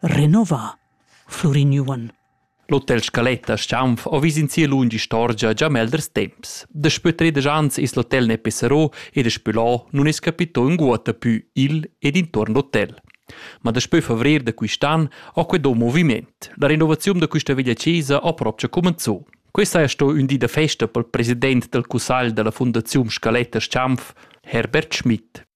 Renova Flurin Juon. L'hotel Scaletta Schampf ho vis in sia lunga istorgia già melders temps. Daspö tredisch ans es l'hotel ne pesserò ed daspö là nun es capito ünguotta pü il ed intuorn l'hotel. Ma daspö favrer da quist'an ho quedò moviment. La renovaziun da quista villa chesa ha propcha cumenzò. Questa è sto ün di da festa pel president dal cussagl da la Fundaziun Scaletta Schampf, Herbert Schmidt.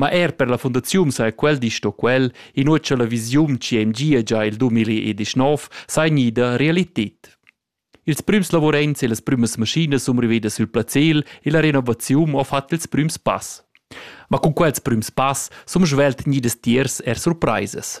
Ma er per la fundaziun saja quel di sto quel, inua cha la visiun CMG è gia il 2019, sai gnida realited. Ils prüms lavuraints e las prümas maschinas sun rivedas sül placel e la renovaziun ha fat ils prüms pass. Ma cun quels prüms pass sun svelt gnidas tiers er surpraisas.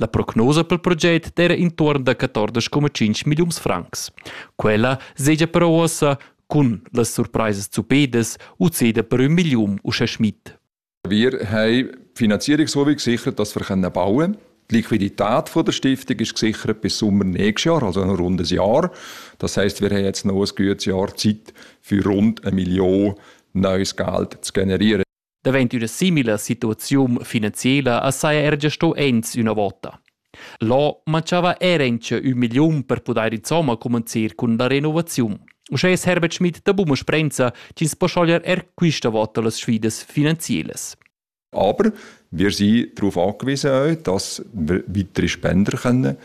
La prognosa pel proget d'eira intuorn da 14,5 milliuns francs. Quella segia però uossa cun las surpraisas zupedas u ceda per ün milliun uschè Schmidt. Wir haben Finanzierungsholding gesichert, dass wir bauen können. Die Liquidität der Stiftung ist gesichert bis Sommer nächstes Jahr, also noch rund ein Jahr. Das heisst, wir haben jetzt noch ein gutes Jahr Zeit, für rund eine Million neues Geld zu generieren. Davent üna simila situaziun finanziela as saja er gia sto ins üna vota. Là manchava era incha ün milliun per pudair insomma comenzir cun la renovaziun. Uschè es Herbert Schmidt da Buma Sprenza chi's po schoglier er quista vota las sfidas finanzielas. Aber wir sind darauf angewiesen, dass weitere Spender können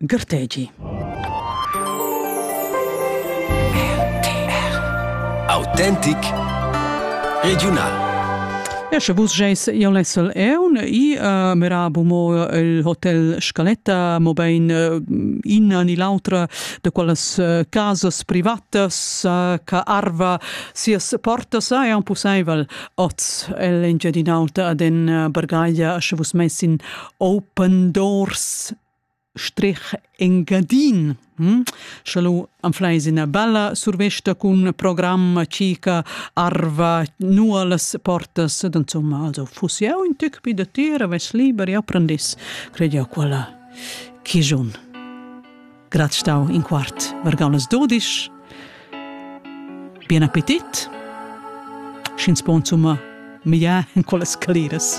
Gartegi. Autentic Regional Esche vus geis ion lessel eun i uh, merabu mo il hotel Scaletta mo bein uh, inna ni l'autra de quellas uh, casas privatas uh, ca arva sias portas ai un possibel oz el engiadinauta ad en uh, bargaglia sche vus messin open doors strich Engadin. Hm? Scha lu anfleis ina bella survesta cun programma cica arva nualas portas, dann insomma, also fuss jau in tüc pi da tir, avess liber e apprendis, cred jau quella chigiun. Grat stau in quart vargau las dodisch. Bien appetit! Sch'ins po insomma migliar in quelle scaliras.